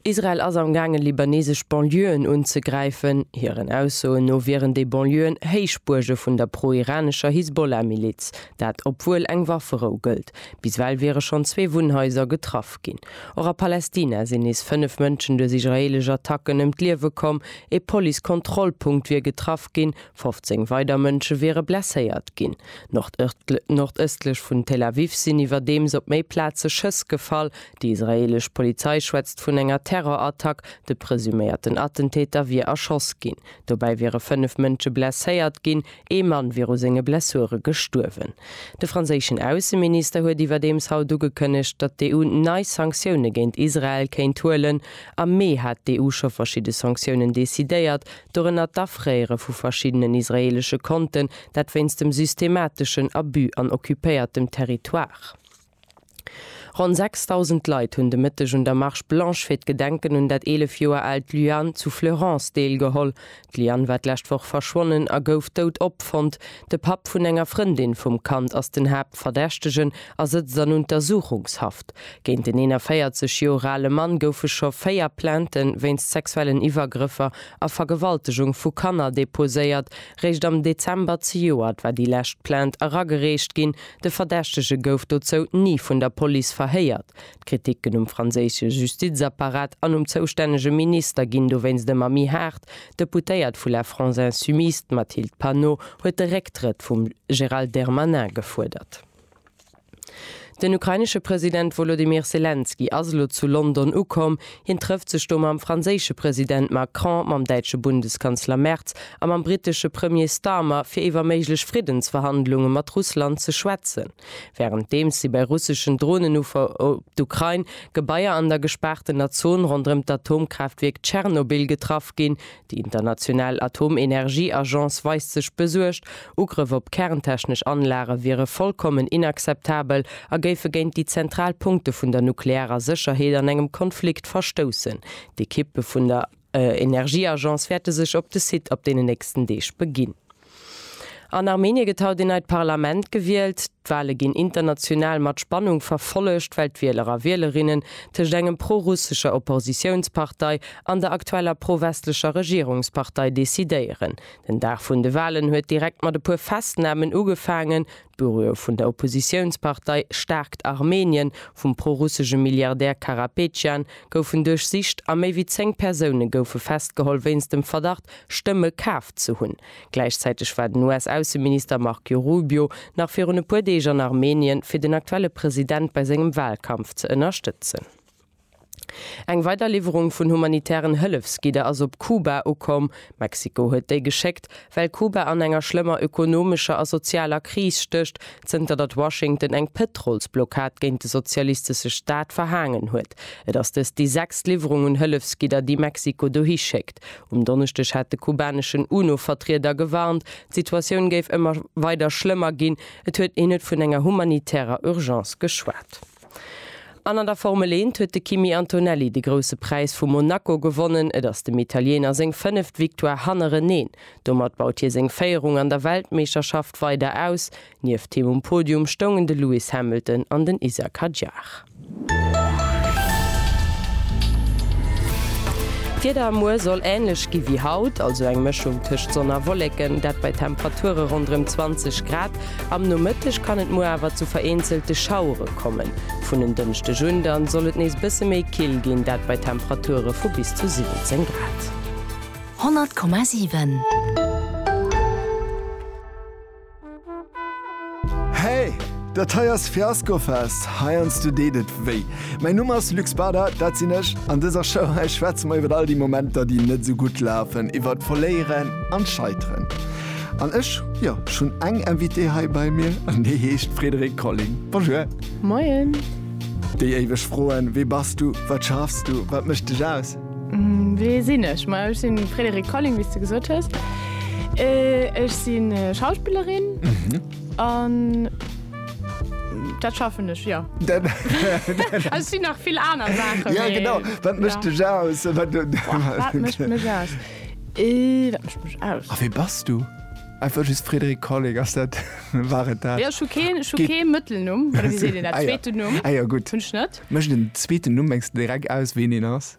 Israel ass am gaangen libanesesch Banlieuën unzegräifen. Hiren Aussoen no wieren déi Banlieuën Héichbuerge vun der pro-iranescher Hisbollah-Miliz. Dat obwuel eng Wafferou gëllt. Bis well wiere schonn zwee Wunnhaiser getraff ginn. Och a Palästina sinn nees fënnef Mënschen duerch israeelesch Attacken ëm d'Liewe komm. Ee Police-Kontrollpunkt wier getraff ginn, 15 weider Mënsche wiere blesséiert ginn. Nordëstlech vun Tel Aviv sinn iwwerdeems op méi Plaze Schëss gefall. Déi israeelesch Polizei schwätzt vun enger Terrorattack. De presuméierten Attentäter wier erschoss ginn. Dobäi wiere fënnef Mënsche blesséiert ginn. Ee Mann wier u senge Blessure gestuerwen. De franséischen Ausseminister huet iwwerdeems haut ugekënnegt, datt d'EU nei Sanktioune géint Israel kéint huelen. Am Mee hat d'EU scho verschidde Sanktiounen decidéiert, dorënner d'Afréiere vu verschiddenen israeelesche Konten, dat wéinst dem systemateschen Abus an occupéiertem Territoire. Ronn 6.000 Leit hunn de Mëtteg un der Marche Blanche fir d'Gedenken un dat 11 Joer aalt Lyanne zu Fleurance deelgeholl. D'Lyanne war d'lescht Woch verschwonnen a gouf dout opfonnt. De Papp vun enger Frëndin vum Kand ass den Haaptverdächtegen a sëtzt an Untersuchungshaft. Géint den 41 Joer ale Mann goufe scho véier Plainte wéinst sexuellen Iwwergrëffer a Vergewaltegung vu Kanner deposéiert. Réischt am Dezember zejoert war déi lescht Plainte eragereecht ginn, De Verdächtege gouf dozou ni vun der Police verhéiert. D'Kriticken um franséische Justizapparat an um zoustännege Minister ginn dowéinst ëmmer méi haart. D'Deputéiert vu La France Insoumise, d'Mathilde Panot, huet de Récktrëtt vum Gérald Dermanin gefuerdert. Den ukrainesche President Wolodymyr Selenskyj ass elo zu London ukomm. Hien trëfft sech do mam franséische President Macron, mam däitsche Bundeskanzler Merz a mam brittesche Premier Starmer, fir iwwer méiglech Friddensverhandlunge mat Russland ze schwätzen. Wärenddeems si bei russeschen Dronenuffer op d'Ukrain, Gebaier an der gespaartener Zon ronderëm d'Atomkraaftwierk Tschernobyl getraff ginn, Déi international Atomenergieagence weist sech besuergt, Ugrëff op kerntechnesch Anlage wiere vollkommen inakzeptabel a géife géint déi zentral Punkte vun der nuklearer Sécherheet an engem Konflikt verstoussen. D'Ekippe vun der Energieagence wäerte sech op de Site op deenen nächsten Deeg beginn. An Armenien gëtt haut een neit Parlament gewielt. D'Wale ginn international mat Spannung verfollegt, well d'Wieler a Wielerinnen tëscht engem pro-russescher Oppositiounspartei an der aktueller pro-westlecher Regierungspartei decidéieren. Den Dag vun de Walen huet direkt mat e puer Festnamen ugefaangen, D'Büroe vun der Oppositiounspartei Staarkt Armenien vum pro-russesche Milliardär Karapetjan goufen duerchsicht a méi wéi 10 Persoune goufe festgeholl wéinst dem Verdacht, Stëmme kaf ze hunn. Gläichzäiteg war den US-Ausseminister Marco Rubio nach virun e puer Deeg an Armenien, fir den aktuelle President bei sengem Walkampf ze ënnerstëtzen. Eng weider Liwwerung vun humanitären Hëllefsgidder ass op Kuba ukomm. Mexiko huet déi geschéckt, well Kuba an enger schlëmmer ökonomescher a sozialer Kris stécht, zënter datt Washington eng Pëtrolsblockad géint de sozialistesche Staat verhaangen huet. Et ass dëst déi sechst Liwwerung un Hëllefsgidder, déi Mexiko dohi schéckt. Um Donneschdeg hat de kubaneschen UNO-Vertrieder gewarnt, d'Situatioun géif ëmmer weider schlëmmer ginn. Et huet een net vun enger humanitärer Urgence geschwat. An an der Formel Eent huet de Kimi Antonelli de Grousse Präis vu Monaco gewonnen. Et ass dem Italiener seng fënneft Victoire hannereneen. Domat baut hie seng Féierung an der Weltmeeschterschaft weider aus. Nieft him um Podium stoungen de Lewis Hamilton an den Isack Hadjar. D'Wieder muer soll änlech gi wéi haut, also eng Mëschung tëscht Sonn a Wolleken, dat bei Temperature ronderëm 20 Grad. Am Nomëtteg kann et muer awer zu vereenzelte Schauere kommen. Vun en Dënschdeg un dann soll et nees bësse méi kill ginn, dat bei Temperature vu bis zu 17 Grad. 100,7. Hey! Dat hei ass Fiaskofest, heiansdo deet et wéi. Mäin Numm ass Luc Spada, dat sinn ech. An dëser Show hei schwätze mer iwwer all déi Momenter, déi net esou gutt lafen, iwwert d'Verléieren an d'Scheiteren. An ech, jo, ech hunn eng Invitée hei bei mir an déi heescht Frédérique Colling. Bonjour. Moien. Déi éiweg Froen, Wie bass du? Wat schaffs du? Wat mécht dech aus? Wie sinn ech? Ma ech sinn d'Frédérique Colling, wéi s de gesot hues. Ech sinn Schauspillerin an dat schaffen ech, jo. Also et sinn nach vill aner Saachen, mee. Ja, genau. Wat mécht dech aus? Wat mécht mech aus? Dat mécht mech aus. A wee bass du? Einfach just Frédéric Colling, ass dat, war et dat? Jo, ech hu keen, ech hu Geet- kee Mëttelnumm, oder wéi seet een dat, Ah ja. zweeten Numm Ah ja, gutt. hunn ech net. Mécht en zweeten Numm, mengs de, direkt aus, ween een ass?